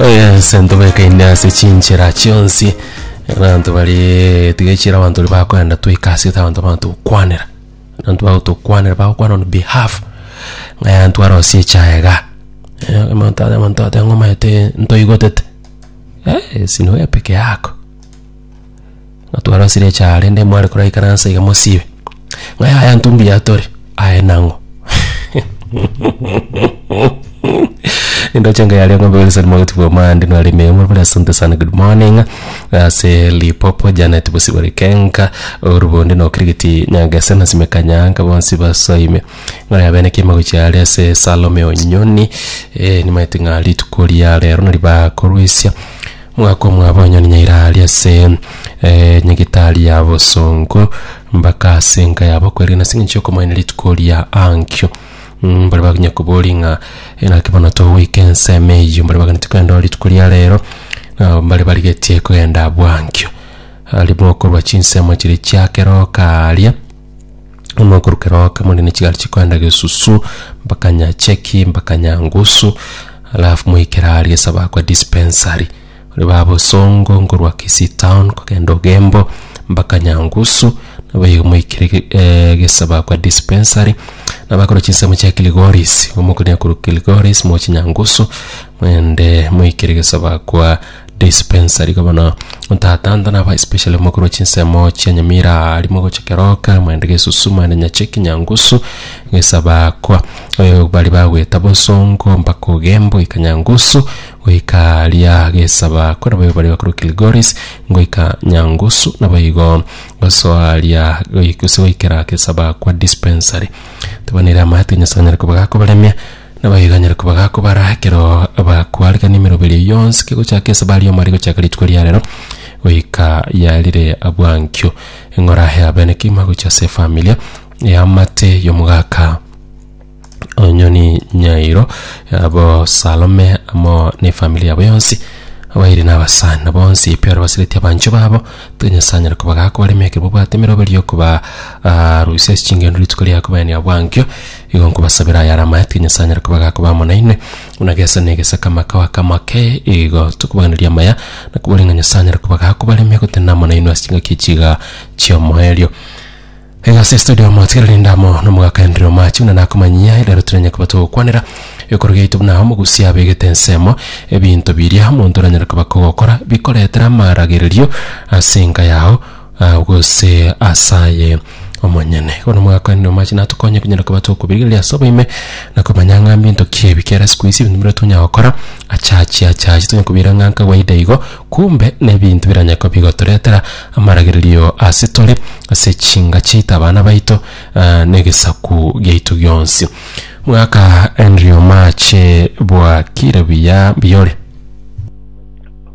oyese ntobekaine ase chinchera chionsi abanto bari tigechira abanto ri bakoenda toika ase ete abanto bagotokwanera abanto bagotokwanera bagokwana on behalf ng'aya ntwarosie echae iga Eh, omonto are omonto ateba ng'o omanyete ntoigotete Eh, esi nigo epeke yako Ng'a twarosire echa are nde mware kora ikaransa iga mosibe. Ng'a yaya ntu mbuya tore. Aye nang'o. Indoche ngaya ria ng'ombe Wilson Mogoti Bwamande nware ime yamo bore asante sana good morning. Ase Lipopo Janet Bosibore Kenga orubonde na okirigiti Nyangese na Sime Kanyanga bonsi basoime. Ng'a yabene kema gochia are ase Salome Onyoni. Eh, nimaete ng'a rituko ria rero nari bakorwesia. Mwakomwa abanyoni nyaira aria ase enyegitari ya bosongo, mbaka ase enka yabo kwerigana ase engencho y'okomoenia rituko ria Ankyo. Mbare bakonya koboria ng'a naki bono togoika ensemo eyio, mbare baganeti kogenda oo rituko ria rero, nabo mbare barigetie kogenda abwo Ankyo. Aria bokorwa chinsemo chiria chia keroka aaria. Mokorokera oka more ne chigari chikoenda gesusu mpaka nyacheki mpaka nyangusu alafu moikere aria ase abakwa dispensary ore ba bosongo nkorwa kisii town kogenda ogembo mpaka nyangusu nabo igo moikere ge- eh, gese abakwa dispensary nabo akorwa chinsemo chia kilgoris omokone akorwa kilgoris moche nyangusu moende moikere gese abakwa dispensary gabana ntatanta naba especially omokoro wa chinsemo chia nyamira arimo gocha keroka mwende gesusu mwende nyacheki nyangusu gesaba kwa eh, bari bagweta bosongo mpaka ogembo ika nyangusu goika ria gesaba kwa nabo bari bakuru kilgoris ngoika nyangusu nabo igo gosoa ria goikuse goikera gesaba kwa dispensary tabanire amate nyasanyare kobaga kobaremia Nabaiganyerokwa bagakobara ekero bakwarigania emeroberi eyio yonsi kegochaka esabari ya omwari gochaka rituko ria rero goika ya rire bwankio. Eng'ora ya bene kegima gochia ase efamilia eamate y'omogaka Onyoni Nyairo abo Salome amo na efamilia yabo yonsi abairi na abasani bonsi pi baria basireti abanchwa babo tiga Nyasaye anyare kobagakobarema ekero babwate emeroberi y'okoba ah, rusia ase chingendo rituko riaye kobaenia bwankio Igo nkobasabera ayare amaetwe, Nyasae anyare koba agakoba amo nainwe, buna gese negese kamaka wakamake. Igo tokobaganeria amaya, na koboria ng'a Nyasae anyare koba agakobaremia gotenena amo nainwe ase chingaki echi igaa chi'omoerio. Iga ase estudio amo tigere rinde amo n'omogaka Henry Omachi buna nakomanyia erero tiranye koba togokwanera ekerogo giaito buna omogusia abegete ensemo, ebinto biria omonto oranyare koba kogokora bikoretera amaragererio ase enka yao, Ah, gose asaye omonyene bono mwakwanire omache natokonye kunyara koba tokobirigereria ase oboime na komanya ng'a mbinto ki ebi kera siku isi ebinto bire tonya gokora achachi achachi tonya kobira ng'a nkawaida igo kumbe nebinto biranya koba bigotoretera amaragererio ase tore ase chinga chiaito abana baito ah, na egesaku giaito gionsi mwaka Henry omache bwakire buya mbuya ore.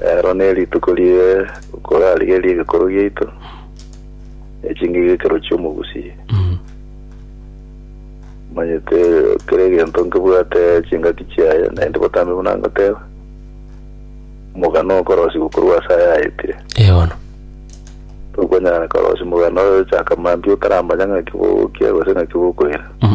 Ero nerituko rie okorarigeria egekorwa giaito, ne chingigio ekero chi'omogusi. Omanyete kera egento nkebwate chingaki chiaye, naende botambe buna ngoteba, omogano okorosigwa korwa ase aya aetire. Ee bono. Tokonyara korosia omogano oyo chaka mambia otaramanya ng'aki bogokia gose ng'aki bokoira. Mm.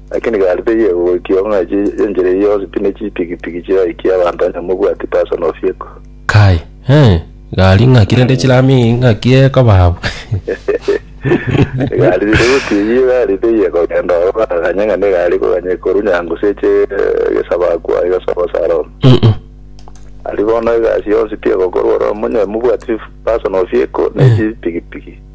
Lakini gari teyegwa goikia ong'ai y'enchera eyio yonsi pi ne chipigipigi chiraikie abanto onye mobwati personal vehicle. Kai, eh, gari ng'aki rende chirami ng'aki ekoba abwo. Egari riri goti eyio gari teyie kogenda oro bakaganye ng'a negari koganye korwa nyangu seche egesabakwa aye egesabo saroma. Mm-mm. Ari bono egasi yonsi pi egokorwa oro monye mobwati personal vehicle ne chipigipigi.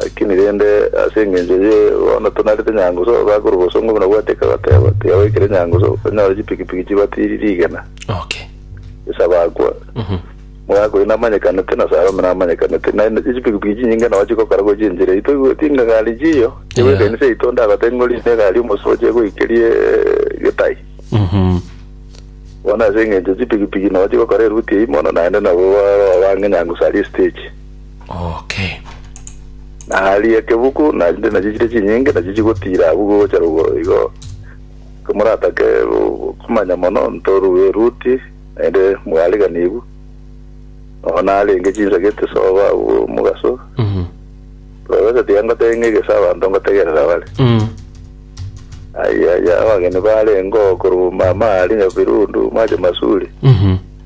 Lakini rende ase engencho ye bono tonarete nyangusu, abakorwa obosongo buna gwateka agateba, Tiga goikera enyangusu, onyore chipikipiki chibatiri rigena. Okay. Yeso abakwa, Mhm. Omogaka oino namanyekanete, na Salome namanyekanete, na na chipikipiki chinyinge nao chigokora gochia enchera yaito. Igweti ng'a egari chiyo, chegwa Yeah. ekanisa yaito, onde agote ng'a orinde egari omosu oche goikerie eh, getai. Mhm. Bono ase engencho chipikipiki nao chigokora eruti eyio mono, naende nabo baroo bang'e nyangusu aria estage. oke. Na aria ekebuku, na chinde nachio chire chinyinge, nachio chigotiira abwo gocha rogoro igo, komoratake go- komanya mono, ntorue Ruti, naende mwariganiwu, nonya narenge chinsa gete soba abwo mogaso, Mhm. roresa tiga ngotenge egesa abanto ngotegerera bare. Mm. Aya ya abageni barengeo korwa mama ari nyabirundu mwache masuri. Mhm.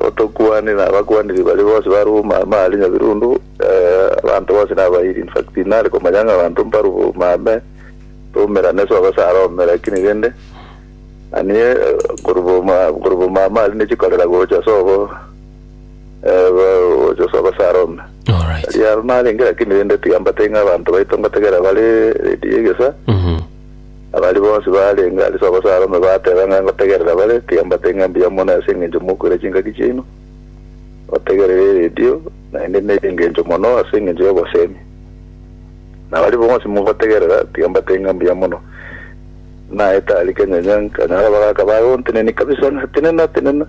Otokwanire abakwaniri baria bonsi ba Roma ime aria Nyabirundu, abanto bonsi nabairi. In fact, tinare komanya ng'a abanto mbarobwo ime ame, tomerane ase obosare ome, lakini rende nanie korobwo ime korobwo ime ame aria nechikorera gocha ase obo eh, bo- gocha ase obosare ome. All right. Tari aro narenge, lakini rende tiga mbatebie ng'a abanto baito ngotegerera bare ready egesa, Mhm. Na baria bonsi barenge ase Abasaalome bateba ng'a ngotegerera bare, tiga mbate ng'a mbuya mono ase engencho mokoira chingaki chiaino, ngotegerere eredio, naende nere engencho mono ase engencho y'obosemi. Na baria bonsi mogotegerera, tiga mbate ng'a mbuya mono. Naete aria kenyanya, nkanyora abagaaka bagontenenia kabisa ng'a, Tenena, tenena!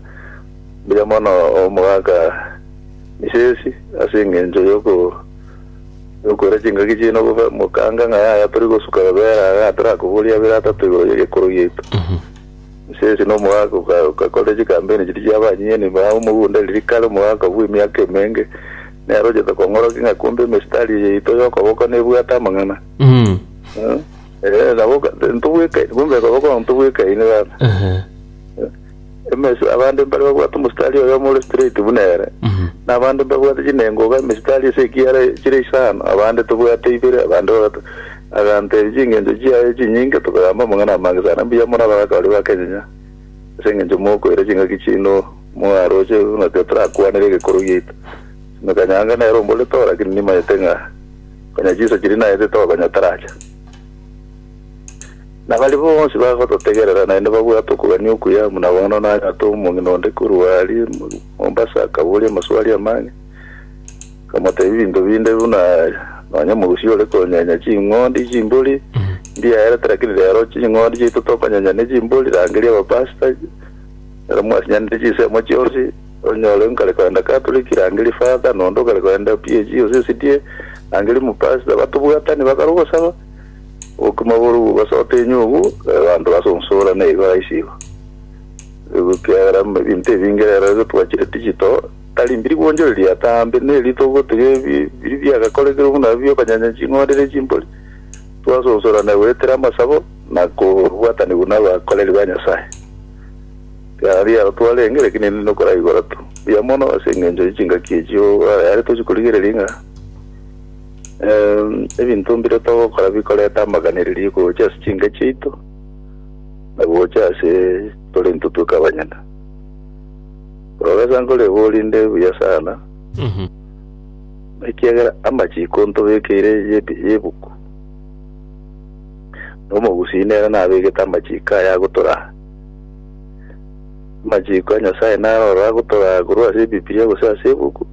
Mbuya mono omogaka Misesi ase engencho y'oko Nokoira chingaki chiaino obobe, mokange ng'a yaya tori gosuka babera aya atarakoboria abere atato igoro ye gekoro giaito. Inse ase nomogaka oka- okakorire chikampeni chiria chia abanyene, baa omogunda riria kare omogaka bwa emiaka emenge, nere ochete kong'orokia ng'a kumbe emistari eye yaito y'okoboko nebwate amang'ana. Mm. Eh, eh, nabo oka- ntobwekaini, kumbe okoboko ntobwekaini baba. Ehe. Emesi, abande mbare babwate omositari oyomo ore straight buna ere, na abande mbabwate chinengoga, emesitari ase ekiara chire isano, abande tobwate ibere, abande babato. Agantebi, Chingencho chiaye chinyinge tokoyamba amang'ana amange sana, mbuya more abagaka baria ba Kenya, ase engencho mokoira chingaki chiino mwaroche ng'aki otorakwanere egekoro giaito. Ime kanyanga nere omborete oo, lakini nimanyete ng'a konya chinsa chiria naete tokonya taracha. Na baria bonsi bagototegerera naende babwate okogania okuya, buna bono nanyate omong'ina onde korwa aria Mombasa akaboria amaswali amange, nkamotebia ebinto binde buna nonya omogusii ore konyenya ching'ondi chimbori ndiaerete lakini rero ching'ondi chiaito tokonyenya ne chimbori rangeria abapasta ero mwasinyanire chinsemo chionsi onyore nkare kogenda Catholic rangeria father na onde okare kogenda PAG osesidie rangeria omopasta batobwatani bakare ogosaba Obokima borobwo basote enyogu y'abanto ase onsoro nigo raisi igo. Ekiagera ebinto ebinge rero igo twachire digital, tari mbiri gwonchoreria atambe, neri togotiga ebi biri biagakorekire buna ebi biokonyanya ching'ondi ne chimbori, twase onsorane goetera amasabo na kobwatanigwa nabakoreri ba Nyasae. Ekiagera riaro twarenge, lakini erinde nokoraigora tu. Mbuya mono ase engencho ye chingaki echio, aya are tochi korigereria ng'a. Em, ebinto mbire togokora bikoreta amaganireria gocha ase chinke chiaito na gocha ase tore ntotweka abanyene korogesa nkore igo orinde buya sana Mhm. ekiagera amachiko ntobekeire y'ebi- y'ebuku na omogusii nere nabegete amachiko aya agotoraa amachiko a nyasaye naro oro agotoraa korwa ase ebibiria gose ase ebuku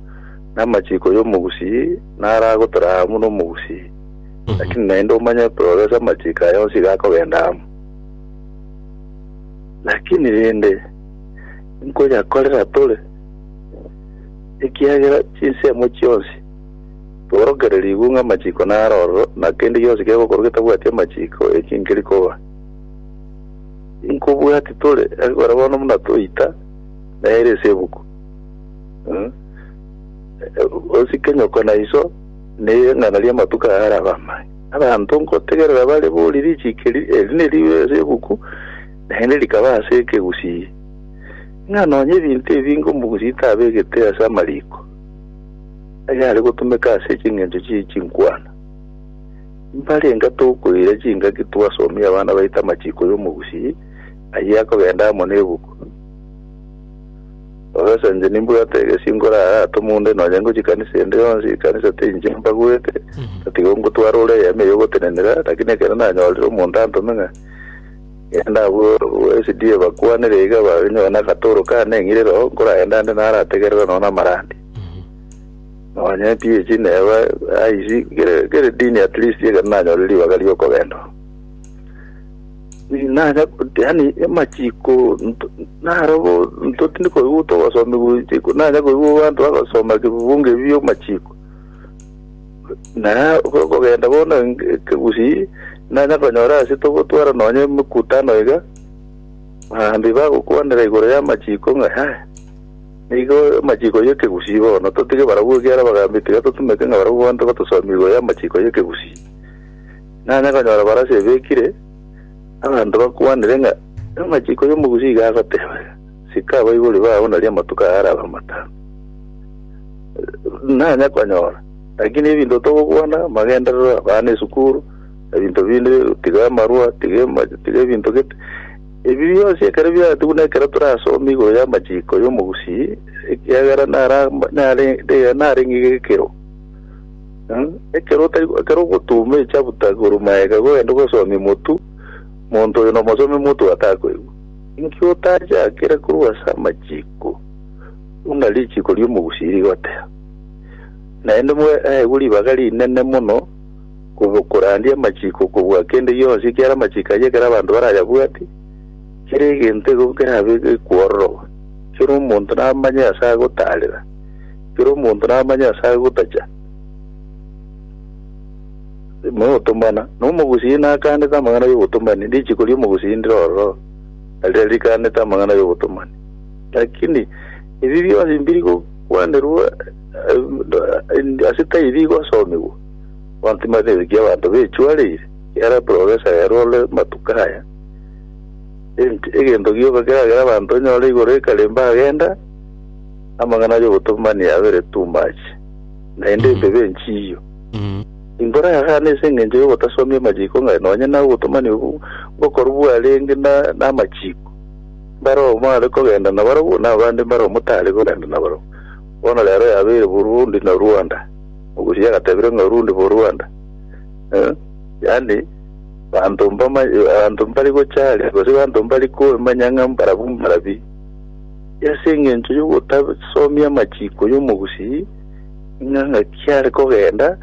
Namachiko yomogusii naragotora amo nomogusii, lakini naende omanye progress amachiko aya onsi iga akogenda amo. Lakini rende nkoyakorera tore, ekiagera chinsemo chionsi tiborokererigwe ng'a amachiko nare ororo, na kende gionsi kegokoro getabwati amachiko eki nkeri koba. Inkobwati tore, ekero bono buna toita nere ase ebuku. Mm. Eh, Osike nyoko na iso neng'ana ri'amatuko aya arabe amaya. Abanto nkotegerera bare bori richiko eri eri neribe ase ebuku, naende rikaba ase ekegusii. Ng'a nonya ebinto ebinge omogusii tabegete ase amariko ayare gotumeka ase ching'encho chie chinkwana. Mbare enga tokoira chingaki twasomie abana baito amachiko y'omogusii, ayio akogenda amo nebuku. Koresa inche nimbwate egesio nkorara atome onde nonya ngochia ekanisa ende yonsi, ekanisa tinche mbaguete, tatiga ongotwara ore eyemo eye ogotenenera, lakini ekero nanyorire omonto antome ng'a genda abwo SDA bakwanere iga banyore na agatoro kane eng'irere oo, nkoragende ande narategerera nonya na amarandi. Nonya PH neba IC, kere kere dini at least ekero nanyorire ribaga ri'okogenda oo. nacha yani amachiko nto- narobo ntotindi koigwa togosomi gochiko nacha koigwa abanto bagosoma kebunge ebi amachiko na ko- kogenda bono eng- ekegusii nacha konyora ase togotwara nonye emekutano iga baambi bagokwanera igoro y'amachiko ng'a yaya nigo amachiko y'ekegusii bono totige barabwo ekiagera bagambia tiga totumeke ng'a barabwo bonto batosomie igoro y'amachiko y'ekegusii Nanye konyora barasi ebekire, abanto bakwanire ng'a amachiko y'omogusi iga agoteba, Sika abaibori bao nario amatuko aya arabe amatano. Nanye konyora, lakini ebinto togokwana, amagenderero, abana esukuru, ebinto binde, tiga amarua, tiga ema- tiga ebinto gete. Ebi bionsi ekero biatigwe nekero torasome igoro y'amachiko y'omogusi, ekiagera nara- nare- nare- narenge gekero. Mm, ekero otari ekero ogotuuma echabuta korwa maega gogende gosomia omotu, monto oyo nomosomia omotu gatakoigwa. Inki otajakire korwa ase amachiko, buna richiko ri'omogusi rigoteba? Naende mweaegwe ribaga rinene mono kobo- korandia amachiko kobua kende gionsi ekiara amachiko ayio ekero abanto barayabwati, kera egento ego kerabe gekwororogwa, kera omonto namanye ase agotaarera. Kera omonto namanye ase agotacha ime otomana, na omogusii nakaanete amang'ana y'obotomani, richiko ri'omogusii ndire ororo, na riria rikaanete amang'ana y'obotomani. Lakini ebi bionsi mbiri gokwanerwa eh, ase taibi gosomigwa. Abanto timatebi ki abanto bechwareire, yara profesa rero ore matuko aya. Ent- Egento gioka keragera abanto onyore igoro ekare mbagenda, Amang'ana y'obotomani abere too much, naende Mhm. empebe enchiiyo. Mm. Imbora yagana ase engencho y'ogotasomia amachiiko ng'ai, nonya na obotomani obwo bokorwa bwarenge na namachiiko. Mbare oyomo are kogenda nabarabwo, na abande mbare oyomo tare kogenda nabarabwo. Bono rero yabeire Burundi na Rwanda. Omogusi yagatebire ng'a Orundi bo Rwanda. Eh, yaani banto mbama, abanto mbari gocha aria, gose abanto mbari koemanya ng'a mbarabwo mbarabi. Ase engencho y'ogotasomia amachiiko y'omogusii, ng'a ng'aki are kogenda,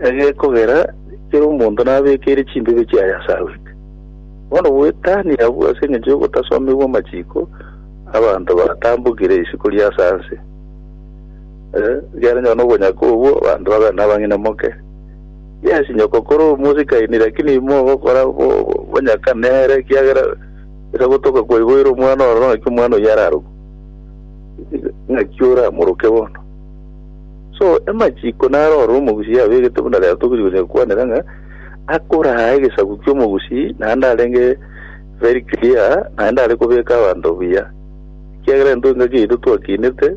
egekogera kera omonto nabekeire chimbibe chiaye ase agwete. Bono goetania abwo ase engencho y'ogotasomigwa amachiiko, abanto batambokire isiko ria ase anse. Eh, ekiagera nyora nobonyaka obwo, abanto babeire nabang'ina moke. Yes, nyoko kore omosikaini, lakini imoogokora bo- bo- bonyaka nere, ekiagera Ere gotoka kwaiboire omwana ororo ng'aki omwana oyio ararogwe, ng'aki oramoroke bono. So emachiko naro ororo omogusii yabegete buna rero tokori gocha gokwanera ng'a akoraa egesaku ki'omogusii naende arenge very clear naende are kobeka abanto buya. Ekiagera intwe engaki yaito twakinete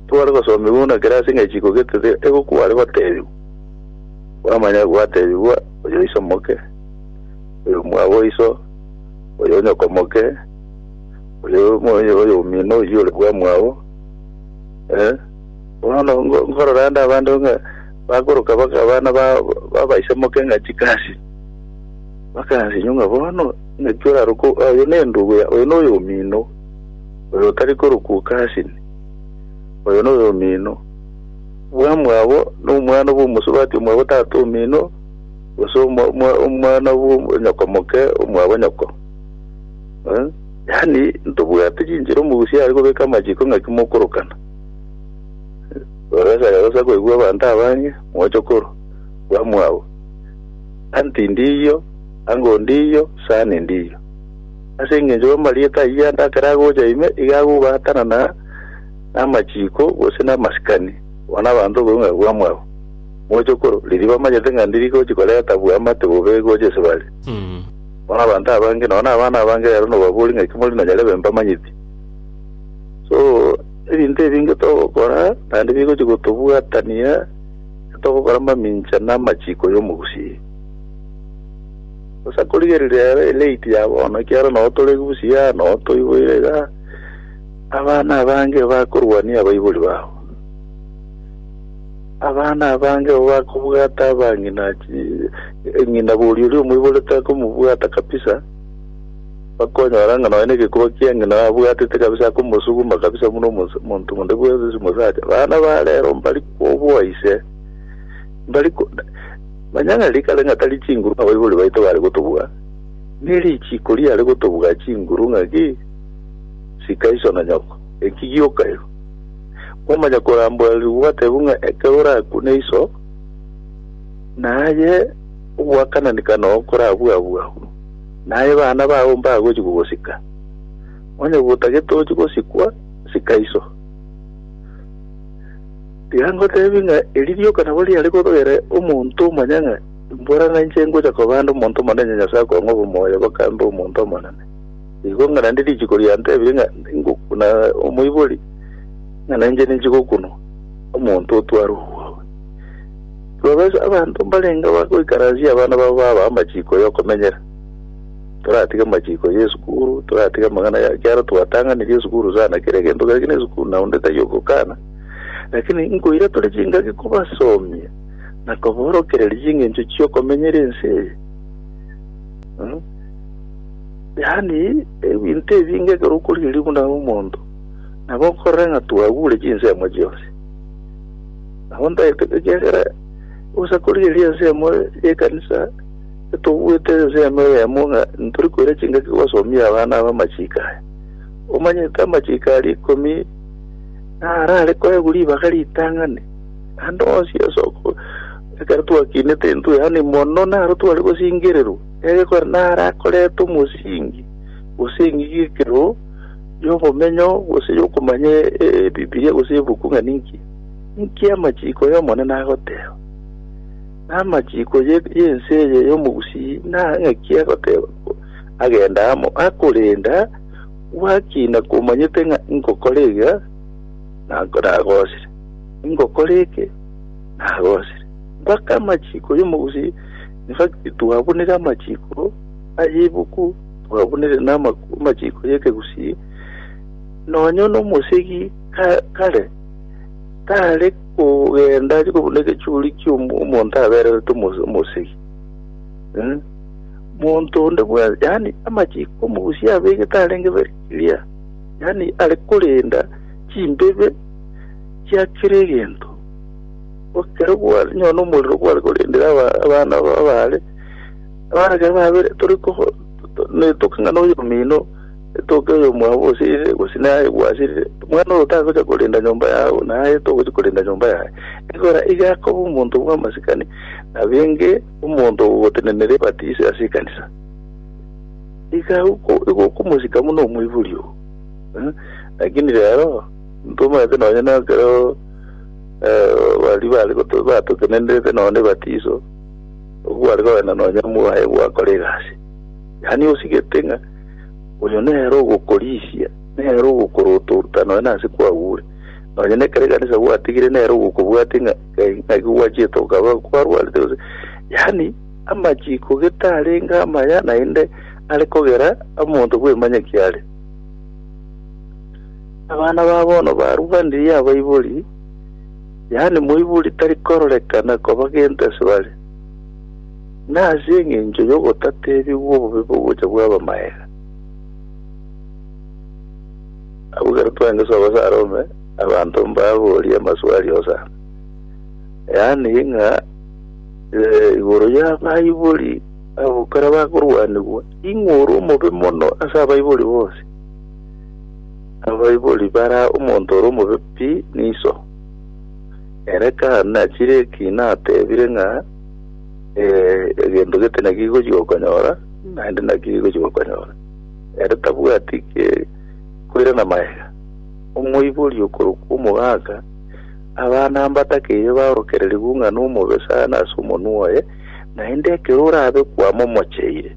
tware gosomiwa buna kera ase ng'a chiko gete tiga ego kware gotebiwa kwamanya gwatebigwa oyoiso moke oyo mwabo oiso oyo onyoko moke, oyo omo- oyo oyo omino oyio ore bwamwao, eh, bono ngo- nkorora ande abande ng'a bakoroka baka abana ba babaisa moke ng'a chikasi, bakansinywa ng'a bono ng'aki oraruka o- oyo nendugu ya oyo noyo omino, oyo otari korokwa okasini, oyo noyo omino, bwamwabo nomwana bw'omosubati omwabo tata omino. gose omwana bw'omonyokomoke omwabo nyoko. Yaani ntobwati chinchera omogusia are kobeka amachiko ng'aki mokorokana. Oresa rero osa koigwa abanto abange mochokoro bamwabo. Anti ndiyo, ango ndiyo, sani ndiyo. Ase engencho y'amarieta ayio ande akare agocha ime iga agobaatana na amachiko gose namasikani bono abanto koigwa ng'a bamwabo. Mochokoro, riria bamanyete ng'a ndi rigochi koreta bwamate bobe gocha ase bare, bono abanto abange, nonya nabana abange rero nobaborie ng'aki morinde nonyare ebe mbamanyeti. So, ebinto ebinge togokora naende bigochi gotobwatania togokora mamincha na amachiko y'omogusii. Bosa korigereria rero elate ya bono ekiagera noo tore busiaa, noo toiboire igaa, abana abange bakorwania abaibori babo. Abana abange abwo bakobwata abang'ina ng'ina boria oria omoiborete akomobwata kabisa, bakonyora ng'a nonya negekuba kia ng'ina abwatete kabisa akomosuguma kabisa buna omonto onde bwensi ase omosacha. Abana ba rero mbari kobua ise, mbari ko manya ng'a riria kare ng'a tari chinguru abaibori baito bare gotobua, ne richiiko riare gotobua chinguru ng'a ki, sika iso na nyoko, eki gioka ero. Kwamanya koramborerigwa gwatebwa ng'a ekero orakwe na iso, naye oboakananeka noo nkorabue abwo abwo, naye abana bao mbagochia kogosika. Onye gotagete ochie gosikwa, sika iso. Tiga ngotebie ng'a eri rioka nabo riare kotogera omonto omanye ng'a imbora nainche ngocha koba ande omonto omonene Nyasae akong'e obomoyo boka mbe omonto omonene. Igo ng'a naende richiko riantebirie ng'a ingokuna omoibori, ng'a nainche ninche gokunwa omonto otware obwabu. Tibabesa abanto mbarenge bagoikaransia abana babo babaa amachiko y'okomenyera. Toratige amachiko y'esukuru, toratige amang'ana ya ekiagera twatang'anirie esukuru sana, kera egento kera gina esukuru na onde tari ogokana. Lakini nkoira tore chingaki kobasomia na koborokereria ching'encho chi'okomenyera ense eye. Yaani, ebinto ebinge ekero okorigereria buna omonto, nabo okorora ng'a twagure chinsemo chionsi. Nabo ntagete ekiagera ogosa korigereria ensemo y'ekanisa, etobuete ensemo eyemo ng'a ntori koira chingaki gosomia abana aba amachiko aya. Omanyete amachiko aria ikomi narare koegwa ribaga ritang'ani, naende onsi ase oko- ekero twakinete intwe, yaani mono naro tware gosingererwa. Eriko narakorete omosingi, gose eng'igi y'ekero, y'obomenyo, gose y'okomanya Ebibilia gose ebuku ng'a ninki? Ninki amachiko y'Omonene agoteeba? Na amachiko y'ense eye y'omogusii na ng'aki agoteeba? Agenda amo, akorenda gwaki nakomanyete ng'a ingokora iga, nagosire, ingokora eke, nagosire, mpaka amachiko y'omogusii. Naki twabunire amachiiko ay'ebibuku, twabunire n'amachiiko y'ekegusii, nonya nomosegi kare tare kogenda arie kobuna egechuuri ki'omonto abererete omosegi. Monto onde bwensi, yaani amachiiko omogusii abegete arenge very clear, yaani are korenda chimbibe chia kera egento. Ekero gware nonya nomorero gware korendera abana aba abare, abana ekero babire tore koko netoke ng'a noyo omino, etoke oyo omwabo osirire gose naye gwasirire, omwana oyo tagocha korenda nyomba yao naye togochia korenda nyomba yaye. Ekero iga akoba omonto bw'amasikani, abenge omonto ogotenenera ebatiso ase ekanisa. Iga oko igo okomosika buna omoibori oo, eh, lakini rero, ntomanyete nonya nekero. eh, baria bare goto- batotenenderete nonya nebatiso, obwo gware kogenda nonya mwaye gwakora egasi. Yaani osigete ng'a oyo nere ogokorisia, nere ogokorotoruta nonya nase kwagure. Nonya nekero ekanisa gwatigire nere ogokobwatia ng'a eh, ng'aki gwachete okaba kwarwarete gose. Yaani amachiko gete arenge amaya naende are kogera omonto bw'emanyaki are. Abana ba bono barwanirie abaibori, yaani moibori tari kororekana koba gento ase bare, na ase engencho y'ogotatebigwa obobe bw'ogocha bw'abamaega. Abwo ekero twaengesa obasa arome, abanto mbaborie amaswali osana, yaani ng'a eh, igoro y'abaibori abo ekero bakorwanigwa, ing'o ore omobe mono ase abaibori bonsi? Abaibori bara omonto ore omobe pi niso. Ere kane achire eki natebire ng'a eh, egento gete naki gigochi gokonyora, naende naki gigochi gokonyora. Ere tabwati ke koirana magega. Omoibori okorokwa omogaka, abana mbatakeiyo baorokererigwe ng'a nomobe sana ase omonwa oye, naende ekero orabe kwama omocheire.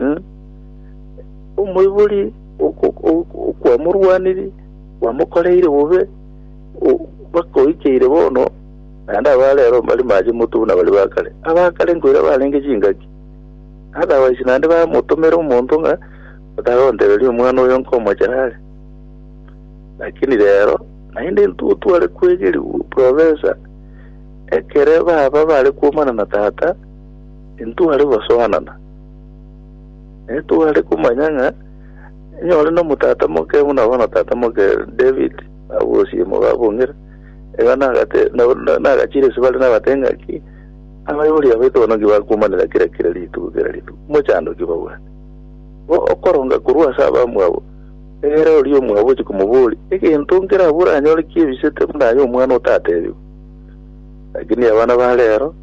Eh? Omoibori oko- oko- okwamorwaniri kwamokoreire bobe o- bakoikeire bono naende abarero bari mache moto buna bari bakare abakare nkoira barenge chingaki otherwise naende bamotomera omonto ng'a otagontereria omwana oyo nkomochera are lakini rero naende intwe tware kwegeri profesa ekere baba bare kuomana na tata Intware gosoanana, netware komanya ng'a onye ore nomotata moke buna bono tata moke David agosie mogabong'ire, iga nagate nagachire ase bare nabate ng'a ki abaibori aba etogonoki bakomanera kera kera rituko kera rituko, mochando ki babwate? Bo okoronga korwa ase abamwabo, egere oria omwabo ochie komoboria, egento nkere abwo oranyore kiebisete buna aye omwana otatebigwa. Lakini abana ba rero.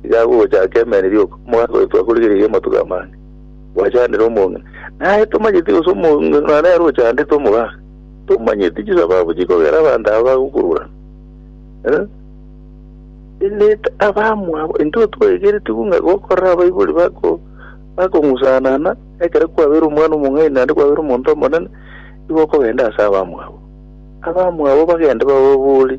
Iga agwo ogochaka emeri rioka, omogaka oito akorigire iga amatuko amange, gwachandire omong'ina. Naye tomanyeti gose omong'ina nere ochandete omogaka, tomanyeti chisababu chikogera abanto aba bagokururana. Eh, Ineta abamwabo, intwe twaigeretigwe ng'a gokorera abaibori bako bakong'usanana, ekero kwabeire omwana omong'aini naende kwabeire omonto omonene, igo okogenda ase abamwabo. Abamwabo bagende bababori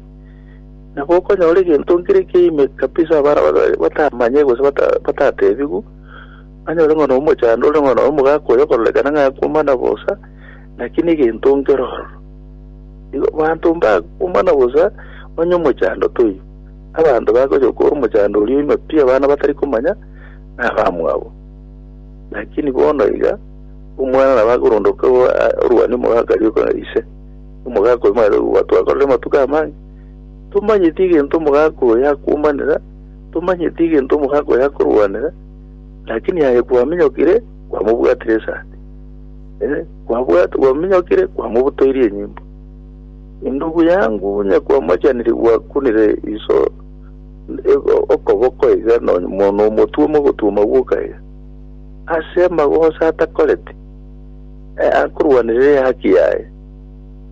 Na gokonyora egento nkere ekeime kabisa abana batamanye gose batatebigwe, banyore ng'a nomochando ore ng'a noyo omogaka oyo okororekana ng'a akumana bosa, naki negento nkere ororo. Igo abanto mbakumana bosa onye omochando toiyo. Abanto bagocha gokora omochando oria oime pi abana batari komanya nabamwabo. Lakini bono iga omwana nabo akorondoka orwane omogaka aria ise, omogaka oyo mwarebe gwa twakorire amatuko amange. Tomanyeti egento omogaka oyo akomanera, tomanyeti egento omogaka oyo akorwanera, lakini aye kwaminyokire kwamobwatire esati, eh, kwabwat- kwaminyokire kwamobutoirie enyimbo. Indugu yangu nyakwamochaniri gwakunire iso e- o- okoboko iga no- mo- nomotuoma ogotuoma gwoka iga ase amagoso atakoreti eh, akorwanire ehaki yaye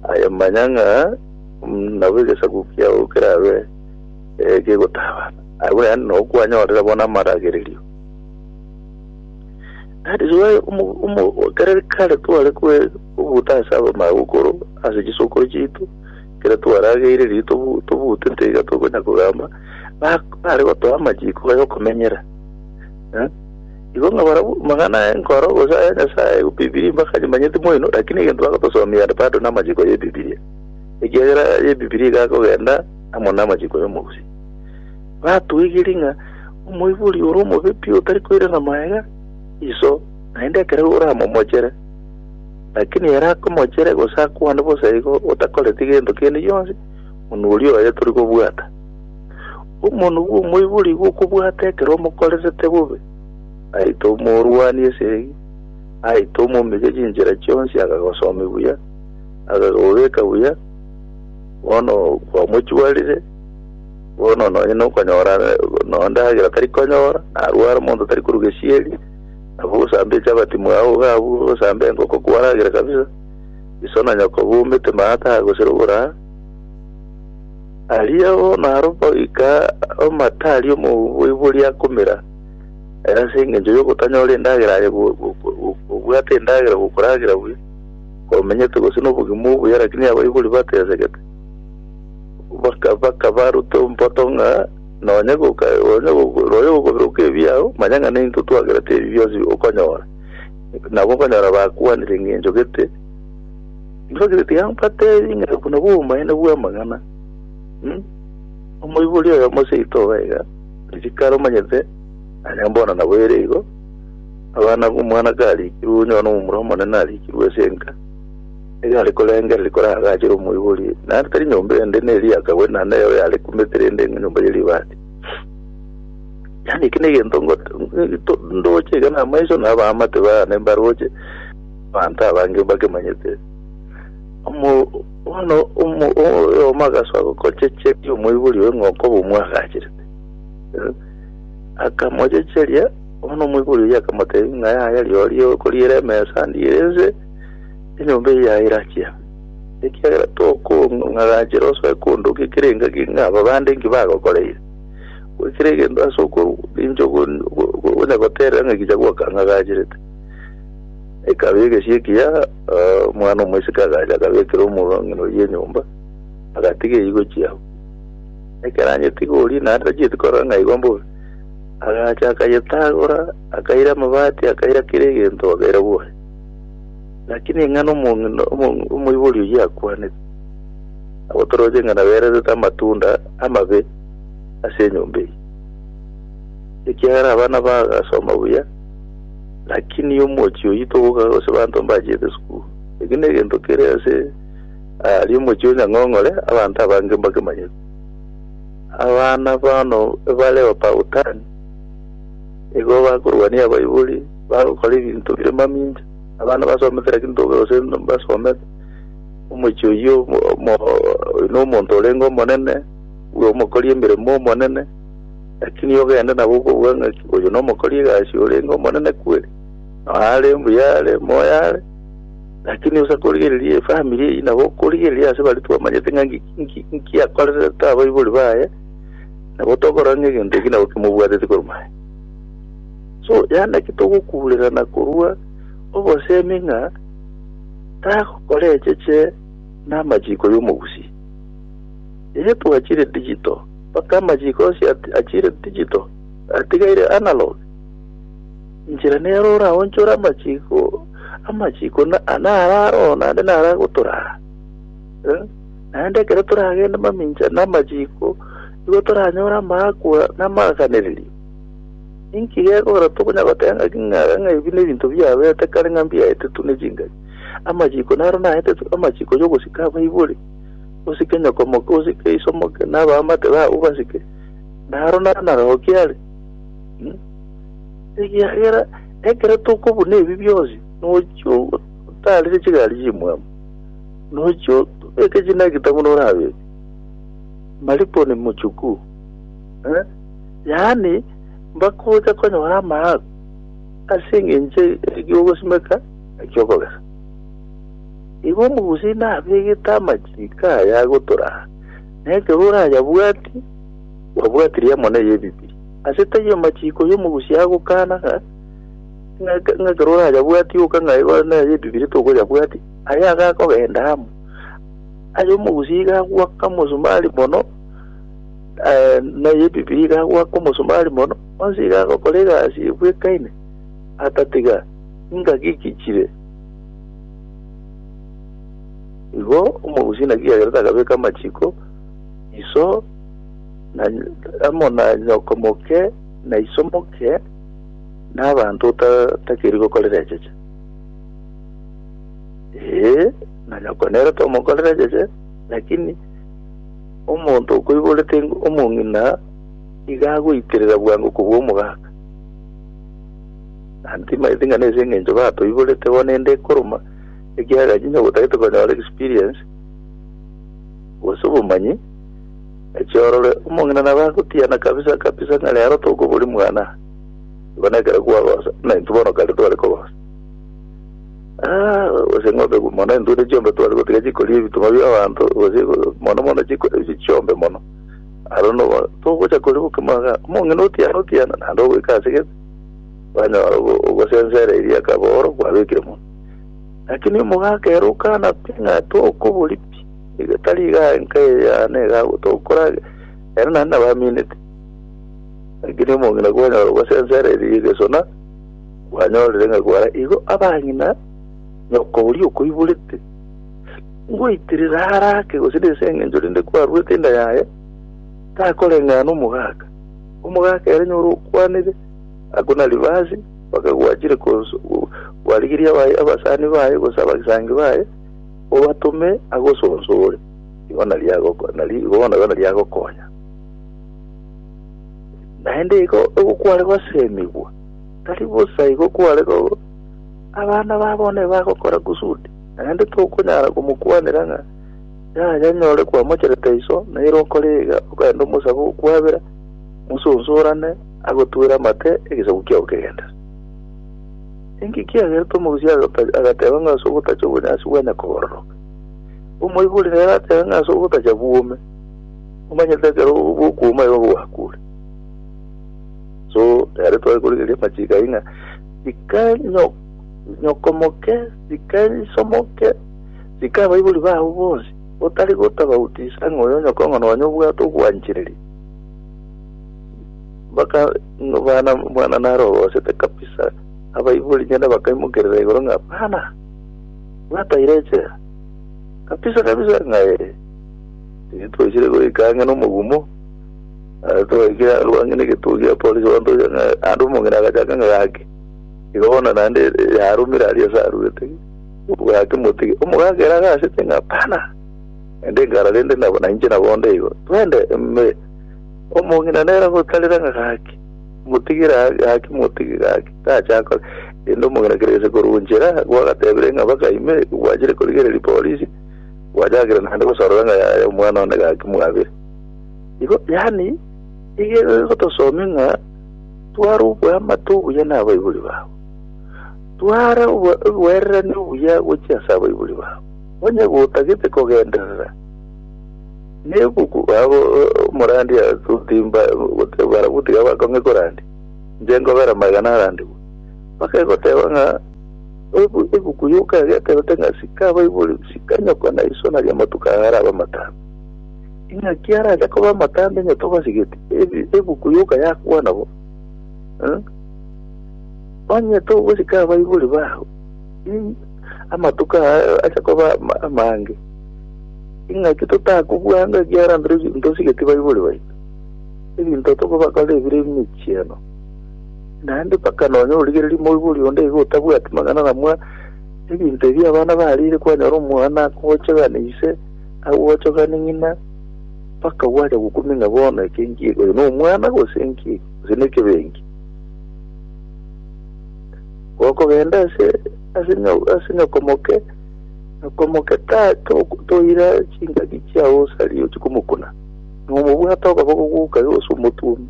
aye manya ng'a Nabo egesaku kiao kerabe kegotaba, agwo naende nao kwanyorire bono amaragererio. That is why omo- omo- kare kare tware kwe- kobuta ase abamagokoro ase chisokoro chiaito kere twarageire riria tobu- tobutete iga tokonya kogamba ba- bare gotoa amachiko aya okomenyera Eh? igo ng'a barabwo mang'ana aya nkoro gose aya nyasaye bibilia mbaka nyimanyete moino lakini egento bagotosomia ande bado namachiko ya ebibilia ekiagera y'Ebibilia egakogenda amo namachiko y'omogusii. Batwegerie ng'a omoibori ore omobe pi otari koirana magega iso, naende ekero oramomochere, lakini ere akomochere gose akwane bosa igo otakoreti gento kende gionsi, monwe oria oye tori kobwata. Omonwe bw'omoibori igo okobwata ekero omokorerete bobe, aite omorwani esegi, aite omomige chinchera chionsi akagosomia buya, Agakobeka buya, bono kwamochuarire, bono nonye nokonyora nonya ndagera tari konyora, narware monto tari korwa gesieri, nabo osambe echabati mwao iga abwo osambe engoko kwaragera kabisa, iso na nyoko baumete maata aa gose roboraa. Aria bono aro goika amate aria omoboibori akomera, ase engencho yogotanyora endagera aye go- go- go- gobwate endagera gokoragera buya. omenyete gose nobogima obuya, lakini abaibori batesegete. Baka- Bakabaruta omboto ng'a nonye goka- nonye goka- nonye gokoberoka ebiao, manya ng'a neinto twagerete ebi bionsi okonyora. Nabo okonyora bakwanire eng'encho gete, Ntibagire tiga mbatebie ng'a obo nabwo obomaene bw'amang'ana. Hmm? Omoibori oyomo seito oba iga, risikara omanyete, aya mbono nabo ere igo, Abana b'omwana kariikirwe onye nomomura omonene ariikirwe ase enka, nigo are korengereria koraagachere omoibori, na tari nyomba ende neri akagwe na nere oyare kumete rende nyomba ye ribaati. Yaani eke negento ngote ndoche iga na amaiso na abaamate baane mbaroche abanto abange bakemanyete. Omo bono omo oyomo agasoa gokochecheria omoibori oye ng'a okoba omwagacherete. Akamochecheria Bono omoibori oyio akamotebia ng'a yaya rirorio okoriera emesa ndiire inse enyomba eye yaye erachia, ekiagera tokong'agachera osoe kondoka ekero engaki ng'a aba bande inki bagokoreire. Goikera egento ase okorwa ninche ogo- ogo- ogo- ogonya goterera ng'a ekicha gwakang'agacharete. Ekaba egesie ekiya, ah, omwana omoiseke agacha akabekera omorwang'ina oyio enyomba, agatiga eywo gochia abwo. Ekero anyetigori naende tachieti korora ng'a aigwa mbore. Agacha akayetagora, akaira amabati, akaira kera egento, akaira bwori. Naki ning'ana omong'ina omo- omoibori oyio akwanete, agotoroche ng'a nabererete amatunda amabe ase enyomba eye. Ekiagera abana bagasoma buya, lakini omochi oyio togoka gose abanto mbachiete sukuru. Eki negento kere ase aria omochi o Nyang'ong'ore, abanto abange mbakemanyete. Abana bono ebareo Pautani, nigo bakorwania abaibori, bagokora ebinto bire mamincha. Abana basomete naki ntoke gose mbasomete, omochie oyio omo oyio nomonto orenge omonene, bwe omokori emeremo omonene, lakini ogende nabo okobua ng'aki oyio nomokori egasi orenge omonene kweri? Noyo are mbuya are, moyo are. Lakini osa korigereria efamiri eyio nabo okorigereria ase baria twamanyete ng'a nki- nki- nki akorerete abaibori baye, nabo tokorora ng'a egento eki nabo kimobwateti korwa maye. So yaani naki togokuurerana korwa obosemi ng'a tagokora echeche namachiko y'omogusi. Eye twachire digital, mpaka amachiko onsi ati- achire digital, atigaire analog. Inchera nero oraonchore amachiko, amachiko na ana araro naende nara gotorara. Eh, Naende ekero toragende mamincha na amachiko, igo toranyore amaakwa na amaaganererio. Inki gekogera tokonya goteba ng'aki ng'a ng'a ebi nebinto biaberete kare ng'a mbiaetetwe ne chingaki? Amachiko naro naetetwe, amachiko y'ogosika abaibori, osike nyokomoke, osike isomoke, na abaamate babo basike, naro naro narokia are. Ekiagera ekero tokobuna ebi bionsi, nochi otaarire chigari chimwabo, nochi otobeke chinaki tang'u norabeke. Malipo ni muchukuu. Eh? Yaani, mbakocha konyora amaako ase eng'encho eki'ogosimeka na eki'okogesa. Igo omogusii nabegete amachiiko aya agotoraa, na ekero orayabwati, Babwati riamo na ey'ebibi. Ase taiyo amachiiko y'omogusi agokana ng'a, ng'a ekero orayabwati oka ng'a aye na ay'ebibi retokoyabwati, aye iga akogenda amo. Ay'omogusi iga agoaka omosomari mono, eh, na ey'ebibi iga agoaka omosomari mono, onsi iga agokora egasi ebwekaine, atatiga ingaki gichire. Igo omogusi naki agerete akabeka amachiiko iso na amo na nyoko moke na iso moke na abanto otatakiri gokorera echeche ee na nyoko nere tomokorera echeche lakini omonto okoiborete ing- omong'ina iga agoitirira bwango kobua omogaka nantimaeti ng'a nese eng'encho batoiborete bono ende ekoroma ekiagera chinya gotagete konyora experience gose obomanyi Echiorore, omong'ina nabo agotiana kabisa kabisa ng'a rero tokoboria mwana, igo nekero kwagosa, buna intwe bono kare tware kogosa. Ah, gose ng'ombe gu- mono intwe ne chiombe tware gotiga chikoria ebituma bia abanto, gose go- mono mono chiko- chi- chiombe mono. Aro nobo togocha koria bokima iga, omong'ina otiana otiana naende ogoika ase gete, kwanyora ogo- ogosensa ere eria akaba oro kwabekire mono. Lakini omogaka ere okana pi ng'a tokoboria pi. Iga tari iga enka eya nega gotokora ere naende nabaminete. Lakini omong'ina kwanyora gosensera erie y'egesona, kwanyorire ng'a kwara igo abang'ina nyoko oria okoiborete. Ngoitirira ara ake gose nese eng'encho rinde kwaruete inda yaye, takoreng'ana omogaka. Omogaka ere nyora okwanire, akona rivasi, mpaka gwachire kos- gwarigeria abaye abasani baye gose abagisangi baye, Obatome agosonsore, igo nario agoko- nario igo bono igo nario agokonya. Naende igo igo kware gosemigwa, tari bosa igo kware go abana ba bono ebagokora kusudi, naende tokonyara komokwanera ng'a yaya nyore kwamocherete iso, nere okore iga okaenda omosabe okwabera, musonsorane agotwere amate egesaku kiao kegenderere. Inki kiagerete omogusi agateba ng'a ase ogotacha obonyansi bwane kobororoke? Omoibori nere atebe ng'a ase ogotacha bwome, omanyete ekero okwoma igo gwakure. So nere tware korigereria amachiko ayio ng'a tika nyokomoke, tika isomoke, tika abaibori bao bonsi, otari gotabautisa ng'a oyo nyokong'a nonya obwate ogwanchereria. Mpaka Bana, omwana narogosete kabisa. Abaibori nyene bakaimokerera igoro ng'a, Bana, bwataire echela? Kabisa kabisa ng'a ee. Titwaisire goika ang'e nomogumo. Ah, Twaikire arwa ang'e negetuo gia polisi bantoria ng'a ande omong'ina agachaka ng'a gaki. Igo bono naende eh, yarumire aria ase aruete. Gaki motige. Omogaka ere agasete ng'a, Bana, ende ngara rende nabo nainche nabonde igo. Twende, ime. Omong'ina nere gotarera ng'a gaki, motigire gaki, motige gaki, tache akore. Rende omong'ina kera gese korwa nchera gwagatebire ng'a baka ime, gwachire korigereria polisi, gwachakire naende gosorora ng'a yaya omwana one gaki mwabire. Igo yani iga egotosomia ng'a tware oboamate obuya na abaibori babo, tware obo- oboererania obuya gochia ase abaibori babo, onye gotagete kogenderera Nebuku abo omorandia agotimba goteba barabwo tiga bakong'e korandia, inche nkobera magena arandegwe. Mpaka egoteba ng'a ebuku yoka eria etebete ng'a sika abaibori, sika nyoko na iso naria amatuko ao arabe amatambe. Ing'aki arache koba amatambe onye tobasigeti, ebuku yoka yakwana bo. Onye togosika abaibori bao, Amatuko aya acha koba amange. Ing'aki totakobua ng'a ekiagera ntosigeti baibori baito, ebinto tokobakora ebire emichieno, naende mpaka nonya origererie moibori onde iga otabwati mang'ana na mwa ebinto ebi abana bariire kwanyora omwana akochogani ise, agochogani ng'ina, mpaka gwacha gokumia ng'a bono eke nki, oyo nomwana gose nki, gose nekebenki. gokogenda ase ase ase nyoko moke, nyoko moke ta toira chingaki chiao osari ochi komokuna, nomobwate okaboko goka yose omotuome,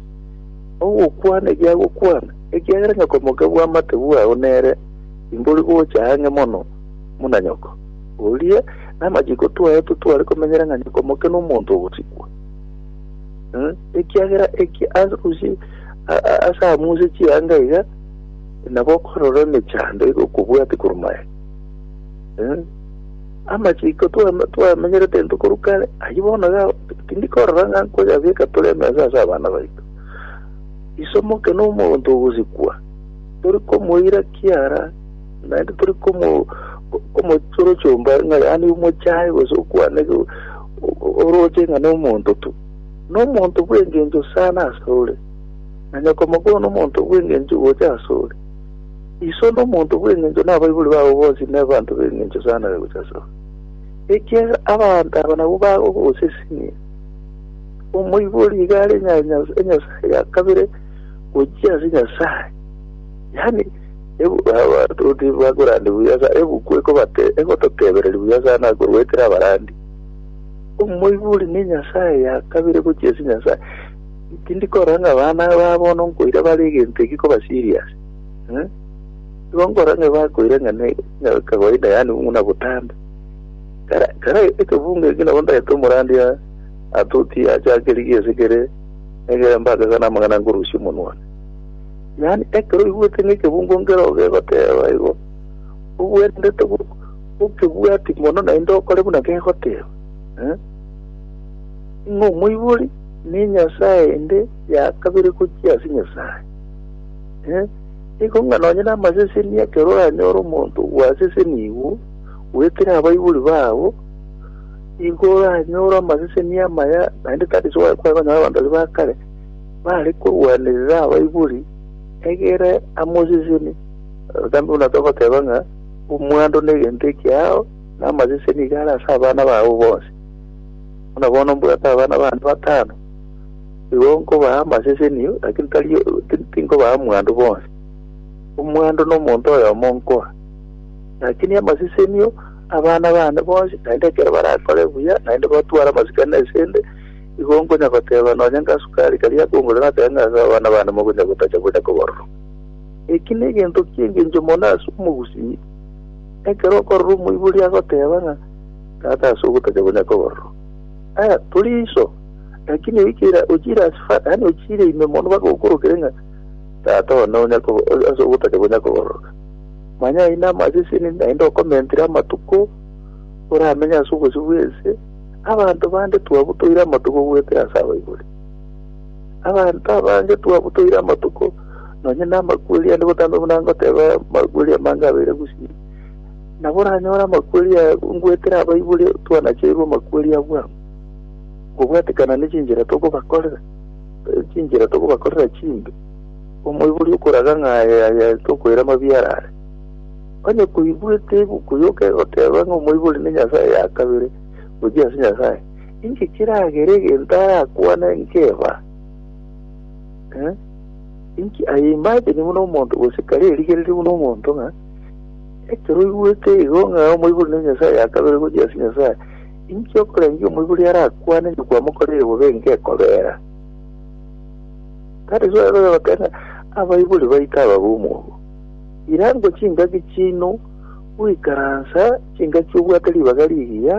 ogokwana egiagokwana, ekiagera nyoko moke bwamate bwao nere imbori gocha ang'e mono muna nyoko. Oria namachiko twaye totware komenyera ng'a nyoko moke nomonto ogosikwa. Ekiagera eki ase amuise chianga iga nabokorora emechando iga okobwate korwa maega. Eh, amachiko twame- twamenyerete intwe korwa kare, ayio bono iga tindi korora ng'a nkoyabeka tore emesa ase abana baito. Isomo oke na omonto ogosikwa, tori komoira kiara, naende tori komo ko- komochorochia omba ng'a yaani omochae gose okwane go- o- o- oroche ng'a na omonto tu. Na omonto bw'engencho sana ase ore. Onye okomokoro nomonto bw'engencho gocha asore, iso nomonto bw'engencho na abaibori babo bonsi nebanto b'engencho sana gocha asore, ekiagera abanto aba nabwo bagogosesenia. Omoibori iga are enyasae ya kabere gochia ase Nyasae, yaani abatoti bakorande buya sana, ebuku egototebereria buya sana korwa ekero abarandi. Omoibori nenyasae ya kabere gochia ase Nyasae. Tindikora ng'a abana ba bono nkoira bare egento ekio koba serious. Eh? Igo nkora ng'a bakoira ng'a ne ng'a kawaida yani buna botambe. Kara kara ekebunga ekio nabo ndagete omorandi a atuti achake rigi ase kere egere mbake sana amang'ana nkorusia omonwa. Yani ekero oigwete ng'a ekebungo nkero gegoteba igo obwendete go gokebwati mono naende okore buna gegoteba. Eh? Ng'a omoibori Nenyasae ende ya kabere gochia ase Nyasae. Ee, nigo ng'a nonye namaseseni ekero oranyore omonto ogwasesenigwe goetera abaibori babo, nigo oranyore amaseseni amaya, naende tari soe kware konyora abanto baria ba kare bare korwanerera abaibori, egere amoseseni. Obotambe buna togoteba ng'a omwando negento ekiao, na amaseseni iga are ase abana babo bonsi. Buna bono mbwate abana bane batano, igo nkobaa amasesenio, lakini tari tinkobaa mwandu bonsi. Omwandu nomonto oyomo nkoa, lakini amasesenio abana bane bonsi, naende ekero barakore buya, naende batware amasikani asende, igo nkonya goteba nonya ngasukari karia akongorera natebe ng'a ase abana bane mokonya gotacha bonya kobororoka. Eki negento ki'engencho mono ase omogusii, ekero okorora omoibori agoteba ng'a. Tata ase ogotacha konya kobororo. Aya, tori iso, lakini oikera ochiire ase fa, yaani ochiire ime mono mpaka okorokere ng'a Tata one onya kobo- o- ase ogotacha konya kobororoka. Manya ayio namaseseni naende okomentire amatuko oramenye ase obosio bw'ense, abanto bande twabutoire amatuko goetera ase abaibori. Abanto abange twabutoire amatuko nonye namakweri ande botambe buna ngoteba amakweri amange abeire gusii. Nabo oranyore amakweri aya ngwetera abaibori twanacheirwe amakweri a bwango, ngobwatekana ne chinchera tokobakorera, eh, chinchera tokobakorera chimbe. Omoibori okoraga ng'a aye aye tokoira mabia arare. Onye koigwete ebuku yoka egoteba ng'a omoibori ne nyasae ya kabere gochia ase Nyasae, inki kiragere egento arakwane nkeba? Eh? Inki I imagine buna omonto gose kare erigereria buna omonto ng'a Ekero oigwete igo ng'a omoibori ne Nyasae akabere gochia ase Nyasae, inki okorengia omoibori arakwane ng'a kwamokoreire bobe enka ekobera? Tari soa igo yogoteba ng'a abaibori baito ababe omwogo. Irango chingaki chiaino goikaransa chingaki obwate ribaga rigiya,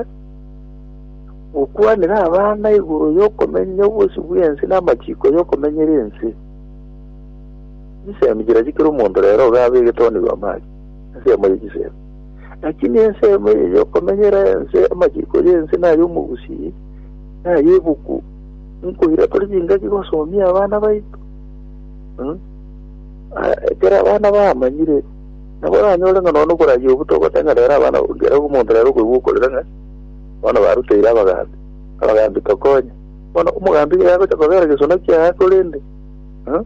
gokwanera abana igoro y'okomenya obosio bw'ense na amachiko y'okomenyera ense. Chinsemi chiria chikera omonto rero iga abegete onigo amari, ensemo ye chisemi. Lakini ensemo eye y'okomenyera ense, amachiko y'ense, na ay'omogusii, na ay'ebuku, nkoira tore chingaki gosomia abana baito. Mm. Ah, Ekero abana bamanyire, nabo oranyore ng'a nonya okorayia obuto ogote ng'a rero abana ngera omonto rero okoigwa okorera ng'a bono baruteire abagambi abagambi tokonye bono omogambi iga yagocha kobera gesona kiaye korende Mm.